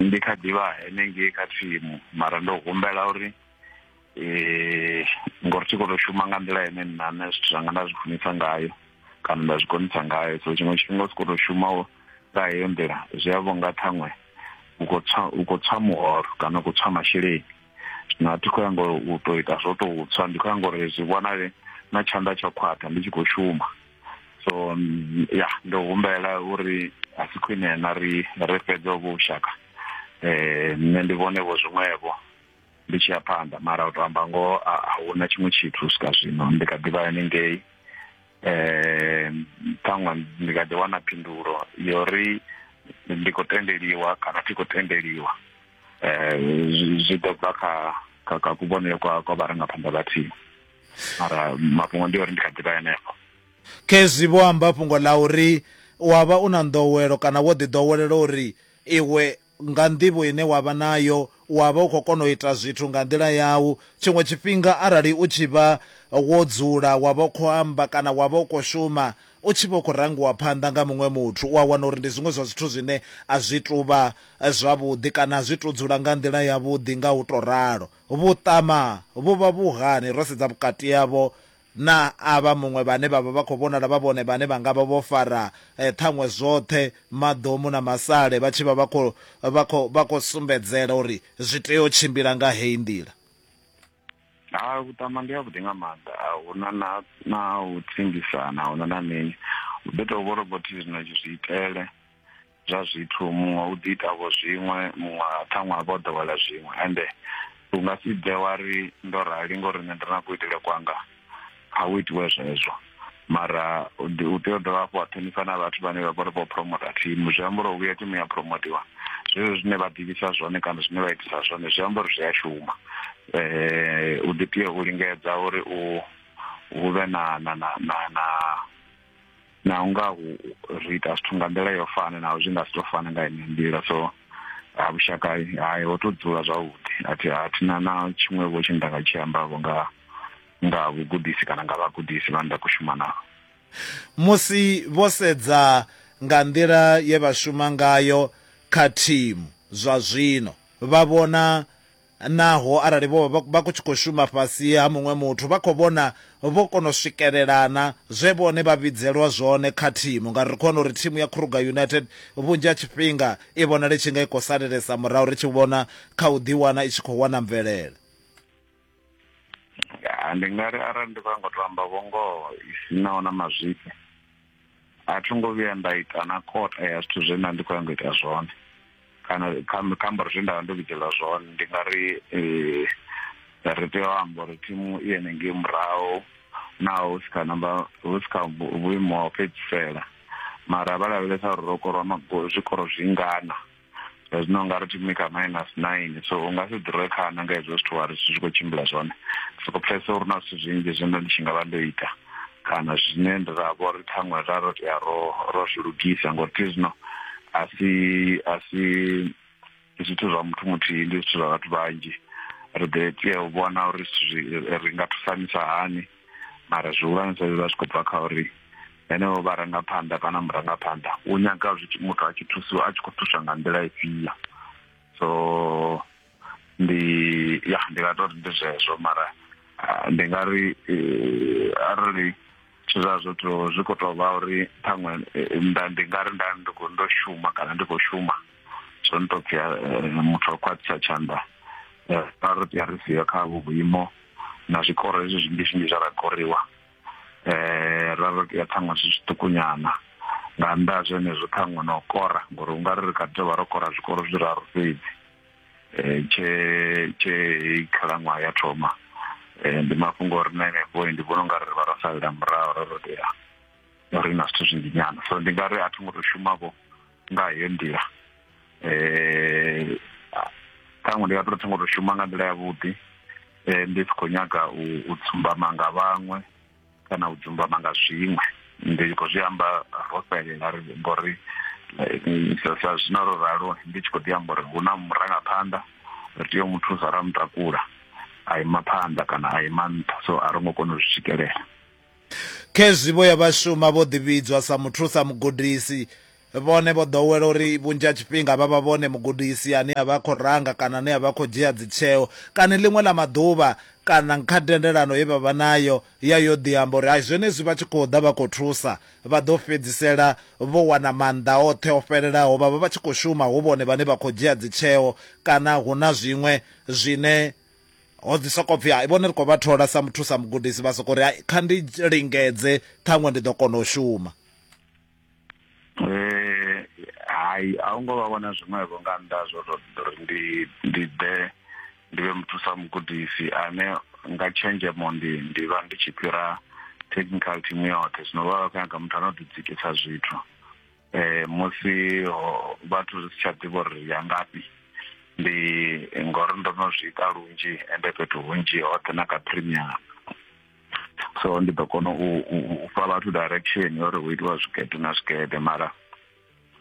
ndi kha ḓivha henengei kha thimu mara ndo humbela uri eh ngori thi khou tou shuma nga nḓila ine nna nṋe zwithu zwanga nda zwi funisa ngayo kana nda zwi konisa ngayo so tshiṅwe tshifhinga u si khou tou shuma nga heyo nḓila zwi a vhonga ṱhaṅwe u khou tswa u khou tswa muholo kana u khou tswa masheleni zwino a thi khou ya ngo u tou ita zwo tou tswa ndi khou ya ngori zwi vhonale na tshanḓa tsha khwaṱha ndi tshi khou shuma so mm, ya ndo humbela uri a si khwine na ri ri fhedze ovho vhushaka eh nṋe ndi vhone vho zwiṅwevho ndi tshi ya phanḓa mara u to amba ngoho a a huna tshiṅwe tshithu u swika zwino ndi kha ḓivha haningei eh ṱhaṅwe ndi kha ḓi wana phindulo yo ri ndi khou tendeliwa kana thi khou tendeliwa eh zwi- zwi ḓo bva kha kha kha kuvhonele kwa kwa vharangaphanḓa vhathihi mara mafhungo ndi uri ndi kha ḓivha henefho khezwi vho amba fhungo ḽa uri wa vha u na nḓowelo kana wo ḓi ḓowelela uri iwe nga nḓivho ine wa vha nayo wa vha u khou kona u ita zwithu nga nḓila yau tshiṅwe tshifhinga arali u tshi vha wo dzula wa vha u khou amba kana wa vha u khou shuma u tshi vha u khou rangiwa phanḓa nga muṅwe muthu u a wana uri ndi zwiṅwe zwa zwithu zwine a zwi tuvha eh, zwavhuḓi kana a zwi to dzula nga nḓila yavhuḓi nga u to ralo Vhuṱama vhu vha vhu hani ro sedza vhukati havho na avha muṅwe vhane vha vha vha khou vhonala vha vhone vhane vha nga vha vho fara ṱhaṅwe zwoṱhe maḓomu na masale vha tshi vha vha khou vha khou vha khou sumbedzela uri zwi tea u tshimbila nga heyi nḓila? Hai, vhuṱama ndi havhuḓi nga maanḓa, a hu na na na u tshimbisana, a hu na na mini. Hu ḓo tou vha uri vho thi zwino zwi itele. zwa zwithu muṅwe u ḓi ita vho zwiṅwe muṅwe ṱhaṅwe a vha o ḓowela zwiṅwe ende u nga si bve wa ri ndo rali ngori nṋe ndi na kuitele kwanga a u itiwe zwezwo mara u tea u dovha hafhu wa ṱhonifha na vhathu vhane vha vhori vho promota thimu zwi amba uri u vhuya thimu ya promotiwa zwezwo zwine vha ḓivhisa zwone kana zwine vha itisa zwone zwi amba uri zwi a shuma um u ḓi tea u lingedza uri u hu vhe na na na na na na u nga hu ri ita zwithu nga nḓila yo fana naho zwi nga si to fana nga ine nḓila so ha vhushaka hai ho to dzula zwavhuḓi athi athi na na tshiṅwe vho tshine nda nga tshi amba vho nga nga vhugudisi kana nga vhagudisi vha nda kushuma navho musi vho sedza nga nḓila ye vha shuma ngayo kha thimu zwa zwino vha vhona Naho arali vho vha vha tshi khou shuma fhasi ha muṅwe muthu, vha khou vhona vho kona u swikelelana zwe vhone vha vhidzelwa zwone kha thimu. Ngauri ri khou vhona uri thimu ya Kruger United vhunzhi ha tshifhinga i vhonala i tshi nga i khou salelesa murahu ri tshi vhona kha u ḓiwana i tshi khou wana mvelele. Ya, ndi nga ri arali ndi khou nyanga u tou amba vhungoho i si naho na mazwifhi, a tho ngo vhuya nda ita na kota ya zwithu zwe nda ndi khou yanga ita zwone kana kha ambaro zwe ndavha ndo vhidzelwa zwone ndi nga ri eh, ri tea u amba uri thimu i ene ngei murahu naho hu si kha namba hu si kha vhuimo ha u fhedzisela mara vha lavhelesa uri ro korwa magolo zwikoro zwingana zwino nga ri timi kha minus nine so u nga si ḓirwe khana nga hezwo zwithu wa ri zwi khou tshimbila zwone soko pfesa uri na zwithu zwinzhi zwine ndi tshi nga vha ndo ita kana zwine ndi ra vho ri ṱhaṅwe ra ro tea ro ro zwi lugisa ngori thi zwino a si a si zwithu zwa muthu muthihi ndi zwithu zwa vhathu vhanzhi ri ḓo tea u vhona uri ri nga thusanisa hani mara zwihulwanesa zwi vha zwi khou bva kha uri henevho vharangaphanḓa kana murangaphanḓa u nyaga muthu a tshi thusiwa a tshi khou thuswa nga nḓila ifhio so ndi ya ndi nga tori ndi zwezwo mara ah, ndi nga ri eh, arali zwithu zwa zwo to zwi khou tou vha uri ṱhaṅwe eh, nda ndi nga ri nda ndi khou ndo shuma kana ndi khou shuma zwo ni to pfhi eh, muthu wa khwaṱhisa tshanḓa eh, ra ri pfhi ri siyo kha vhu vhuimo na zwikoro hezwi zwinzhi zwinzhi zwa ra koriwa eh ra ri ya ṱhaṅwe zwi zwiṱukunyana nga nnḓa ha zwenezwo ṱhaṅwe na u kora ngori u nga ri ri kha ḓi vha ro kora zwikoro zwi raru fhedzi um tshe tshe khalaṅwaha ya thoma um ndi mafhungo ori na enefho ndi vhona u nga ri ri vha ro salela murahu ro rotea ri na zwithu zwinzhi nyana so ndi nga ri a thi ngo to shumavho nga heyo nḓila um ṱhaṅwe ndi nga to thoma to shuma nga nḓila yavhuḓi um ndi si khou nyaga u dzumbama nga vhaṅwe kana u dzumbama nga zwiṅwe ndi khou zwi amba ro fhelela ri ngori sa zwino ro ralo ndi tshi khou ḓi amba uri hu na murangaphanḓa ri tea u mu thusa ra mu takula a ima phanḓa kana a ima nṱha so a ro ngo kona u zwi swikelela Khezwi vho ya vha shuma vho ḓivhidzwa sa muthusa mugudisi. Vhone vho ḓowela uri vhunzhi ha tshifhinga vha vha vhone mugudisi ane a vha a khou ranga kana ane a vha a khou dzhia dzitsheo. Kani ḽiṅwe ḽa maḓuvha kana kha tendelano ye vha vha nayo ya yo ḓi amba uri hai zwenezwi vha tshi khou ḓa vha khou thusa vha ḓo fhedzisela vho wana maanḓa oṱhe o fhelelaho vha vha vha tshi khou shuma hu vhone vhane vha khou dzhia dzitsheo kana hu na zwiṅwe zwine ho ḓi soko pfhi hai vhone ri khou vha thola sa muthu sa mugudisi vha soko ri hai kha ndi lingedze ṱhaṅwe ndi ḓo kona u shuma eh, hai a u ngo vha vhona zwiṅwevho nga nnḓa zwo tori ndi ndi ḓe ndi vhe muthu sa mugudisi ane nga tshenzhemo ndi ndi vha ndi tshi fhira technical team yoṱhe zwino vha vha khou nyaga muthu ano ḓidzikisa zwithu eh musi vhathu ri si tsha ḓivha uri ya ngafhi ndi ngori ndo no zwi ita lunzhi ende fhethu hunzhi hoṱhe na kha premium so ndi ḓo kona u u fha vhathu direction uri hu itiwa zwigede na zwigede mara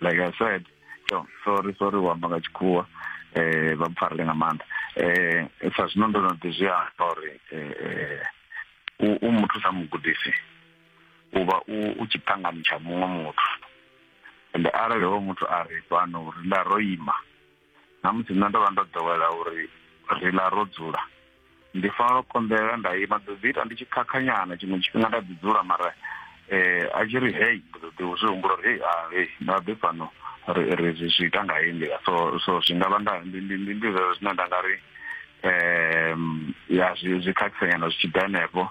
like i said so sorry sorry u amba nga tshikhuwa eh vha mpfarele nga maanḓa eh sa zwino ndo no ḓi zwi amba uri eh, eh u muthu sa mugudisi u vha u u tshiṱangani tsha muṅwe muthu ende arali hoyo muthu a ri fhano ri ḽa ro ima na musi nṋe ndo vha ndo ḓowela uri ri ḽa ro dzula ndi fanela u konḓelela nda ima ḓo ḓi ita ndi tshi khakhanyana tshiṅwe tshifhinga nda ḓi dzula mara eh a tshi ri hei ndi ḓo ḓi zwi humbula uri hei a hei nda ḓi fhano ri ri zwi zwi ita nga heyi nḓila so so zwi nga vha nda ndi ndi ndi ndi zwezwo zwine nda nga ri um ya zwi zwi khakhisanyana zwi tshi ḓa henefho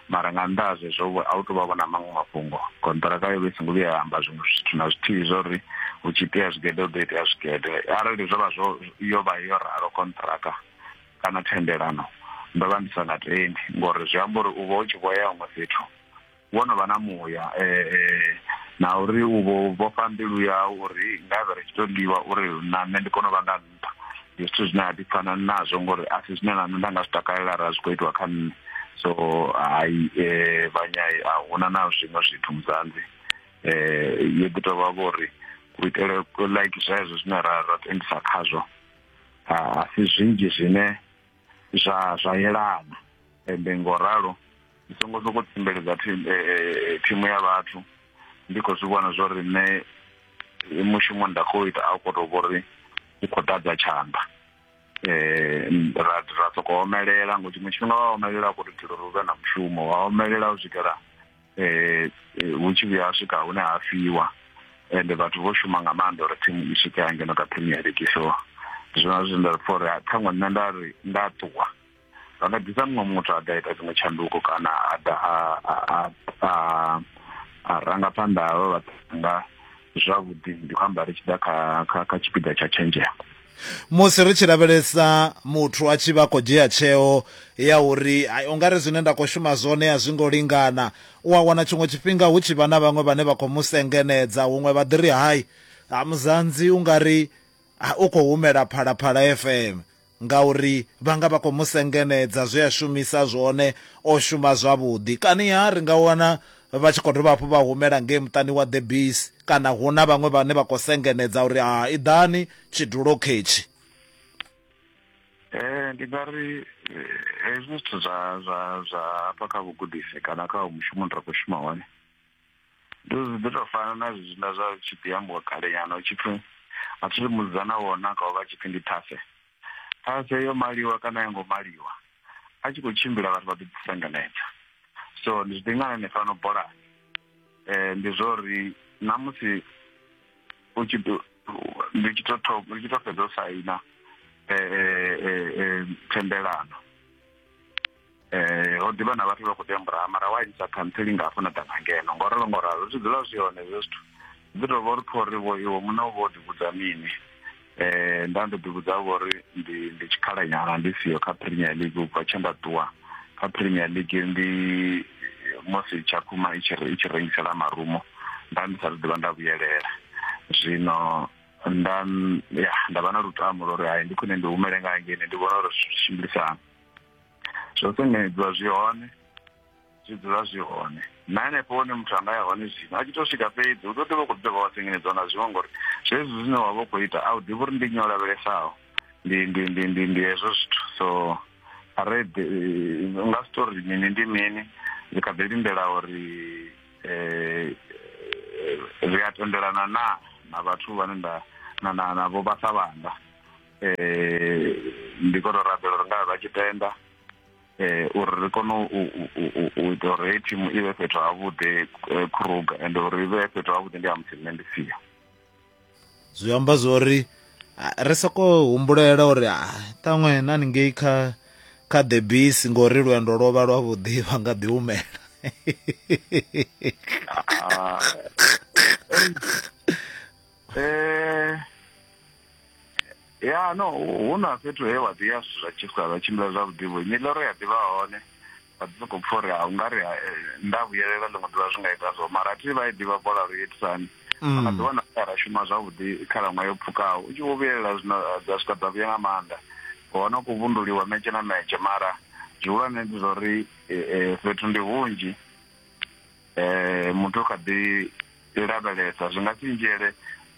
mara nga nnḓa ha zwezwo a u tou vha vhona maṅwe mafhungo konṱiraka yo vha i songo vhuya ya amba zwiṅwe zwithu na zwithihi zwa uri hu tshi itea zwigede hu ḓo itea zwigede arali zwo vha zwo yo vha yo ralo konṱiraka kana thendelano ndo vha ndi sa nga tendi ngori zwi amba uri u vha u tshi vho ya huṅwe fhethu wo no vha na muya um na uri u vho vhofha mbilu yau uri nga vhe ri tshi to ḽiwa uri na nṋe ndi kone u vha nga nṱha ndi zwithu zwine a ḓipfana nazwo ngori a si zwine na nṋe nda nga zwi takalela ra zwi khou itiwa kha nṋe so hai um vhanyai a huna na zwiṅwe zwithu muzanzi um yo ḓi tou vha vho uri u itele like zwezwo zwine ra ra tendisa khazwo a si zwinzhi zwine zwa zwa yelana ende ngo ralo ndi songo soko tsimbeledza thimu eh, eh, eh, ya vhathu ndi khou zwi vhona zwo ri nṋe mushumo nda khou ita a khou tou vho ri u khou ḓadza tshanḓa um ra ra sokou omelela ngo tshiṅwe tshifhinga wa omelela a khou tou itela uri u vhe na mushumo wa omelela u swikela eh hu tshi vhuya swika hune ha fiwa ende vhathu vho shuma nga maanḓa uri thimu i swike ya ngeno kha premier league so zwona zwine nda for ṱhaṅwe nṋe nda ri nda ṱuwa vha nga ḓisa muṅwe muthu a ḓa ita dziṅwe tshanduko kana a ḓa a ranga phanḓa havha vhathu nga zwavhuḓi ndi khou amba ri tshi ḓa kha kha tshipiḓa tsha tshenzhemo musi ri tshi lavhelesa muthu a tshi vha khou dzhia tsheo ya uri u nga ri zwine nda khou shuma zwone a zwi ngo lingana u a wana tshiṅwe tshifhinga hu tshi vha na vhaṅwe vhane vha khou mu sengenedza huṅwe vha ḓi ri hai ha muzanzi u nga ri u khou humela phalaphala fm ngauri vha nga vha khou mu sengenedza zwe a shumisa zwone o shuma zwavhuḓi kani ha ri nga wana vha tshi khou dovha hafhu vha humela ngei muṱani wa The Bees kana hu na vhaṅwe vhane vha khou sengenedza uri ha i ḓani tshidulo khetshi ee eh, ndi nga ri eh, hezwi zwithu zwa zwa zwa hafha kha vhugudisi kana kha mushumo ndi ra khou shuma hone ndi zwi ḓi tou fana na zwithu nda zwa tshi ḓi ambiwa kalenyana u tshi pfhi a thi ri mudzana wona ka u vha tshipfi ndi thafe ṱhase yo maliwa kana ya ngo maliwa a tshi khou tshimbila vhathu vha ḓi ḓisengenedza so ndi zwi ḓingana ni fano bolani um ndi zwo uri na musi u tshi ndi tshi to thoma ndi tshi to fhedza u saina um thendelano eh ho ḓivha na vhathu vha khou tembura mara wa isa khantseli nga hafho na ḓa nga ngeno ngo ralo ngo ralo zwi dzula zwi hone hezwo zwithu ndi tou vha uri pfha uri vho iwe muṋe u vho ḓivhudza mini eh nda ndo ḓivhudza vho uri ndi ndi tshikhala nyana ndi siyo kha premier league u bva tshe nda ṱuwa kha premier league ndi musi tshakhuma i tshi i tshi rengisela marumo nda ndi sa ḓivha nda vhuyelela zwino nda ya nda vha na lutamo lwa uri hai ndi khwine ndi humele nga ngene ndi vhona uri zwi tshimbilisana zwo sengedzwa zwi hone zwi dzula zwi hone na henefho hune muthu anga ya hone zwino a tshi to swika fhedzi u ḓo ḓivha u khou dovha wa sengedzwa nga zwiṅwe ngori zwezwi zwine wa vha u khou ita a u ḓivhi uri ndi nyo lavhelesaho ndi ndi ndi ndi ndi hezwo zwithu so red eh, nga story mini ndi mini ndi kha ḓi lindela uri eh, eh ri a tendelana na na vhathu vhane nda na na na vho vhasa vhanga eh ndi khou tou rabela uri ngavhe vha tshi tenda eh uri ri kone u ita uri hei thimu i vhe fhethu havhuḓi eh, kruga and uri i vhe fhethu havhuḓi ndi ha musi nṋe ndi siyo zwi amba zwori ri soko humbulela uri ṱaṅwe na ningei kha kha the bis ngori lwendo lwo vha lwavhuḓi vha nga ḓi humela ah, Eh, ya no hu na fhethu he wa ḓi ya zwithu zwa tshifha zwa tshimbila zwavhuḓi vho nyiloro ya ḓivha hone a ḓi sokou pfha uri a u nga ri ha, eh, nda vhuyelela ḽiṅwe ḓuvha zwi nga ita so mara a thi vha i ḓivha bola ri itisani Mm. a ḓiwana a ra shuma zwavhuḓi khalaṅwaha yo pfukaho u tshi vho vhuyelela zwino eh, dza swika dza vhuya nga maanḓa hone u khou vhunduliwa metshe na metshe mara zwihulwane ndi zwa uri eh, eh, fhethu ndi hunzhi eh muthu kha ḓi lavhelesa zwi nga si ndzhele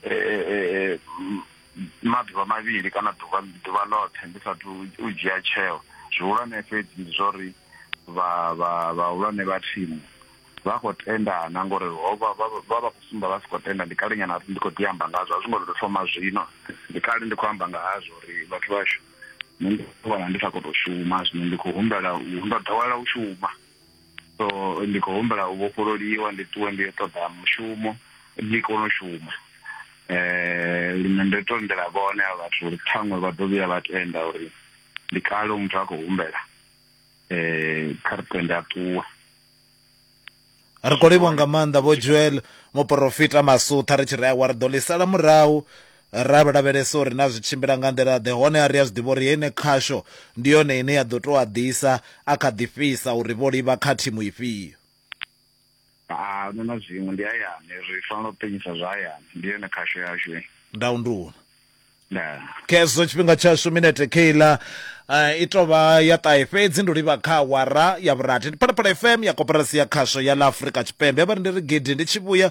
eh maḓuvha mavhili kana ḓuvha ḓuvha ḽoṱhe ndi sathu u dzhia tsheo zwihulwane fhedzi ndi zwa uri vha vha vhahulwane vha thimu vha khou tendana ngori ho vha vha vha vha khou sumba vha si khou tenda ndi kale nyana ndi khou ḓi amba ngazwo a zwi ngo tou thoma zwino ndi kale ndi khou amba nga hazwo uri vhathu vhashu nṋe ndi vhona ndi sa khou tou shuma zwino ndi khou humbela u ndo ḓowela u shuma so ndi khou humbela u vhofhololiwa ndi ṱuwe ndi yo ṱoḓa mushumo ndi kone u shuma eh lino ndo tondela vhone a vhathu uri ṱhaṅwe vha ḓo vhuya vha tenda uri ndi kale muthu a khou humbela eh kha ri tende a ṱuwe ri khou livho nga maanḓa vho joel muporofita masutha ri tshi ri awa ri ḓo ḽi sala murahu Ra vha lavhelesa uri na zwi tshimbila nga nḓila-ḓe, honeha ri a zwi ḓivha uri heyi nekhasho ndi yone ine ya ḓo tou a ḓisa a kha ḓi fhisa uri vho livha kha thimu ifhio. A hu na zwiṅwe, ndi hayani. Ri fanela u ṱuwisa zwa hayani. Ndi yone khasho yashu heyi. Ndau ndi u na. Ndaa. Khezwo tshifhinga tshashu, minete kheiḽa i tou vha ya ṱahe fhedzi ndi u livha kha awara ya vhurathi. Ndi Phalaphala FM ya Koporasi ya Khasho ya ḽa Afrika Tshipembe. Vha ri ndi ri gidi ndi tshi vhuya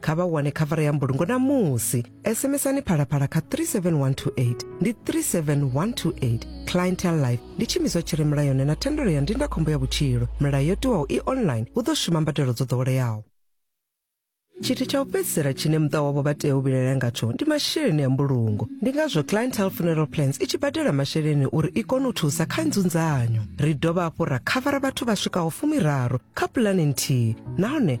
kha vha wane khavara ya mbulungo na musi sms-ani phalaphala kha 37128 ndi 37128 clientel life ndi tshimiswa tshi re mulayoni na thendelo ya ndindakhombo ya vhutshilo milayo yo tiwaho i online hu ḓo shuma mbadelo dzo ḓoweleaho tshithu tsha u fhedzisela tshine muṱa wavho vha tea u vhilaela ngatsho ndi masheleni a mbulungo ndi ngazwo clientel funeral plans i tshi badela masheleni uri i kone u thusa kha nzunzanyo ri dovha hafhu ra khavara vhathu vha swikaho fumiraru kha pulani nthihi nahone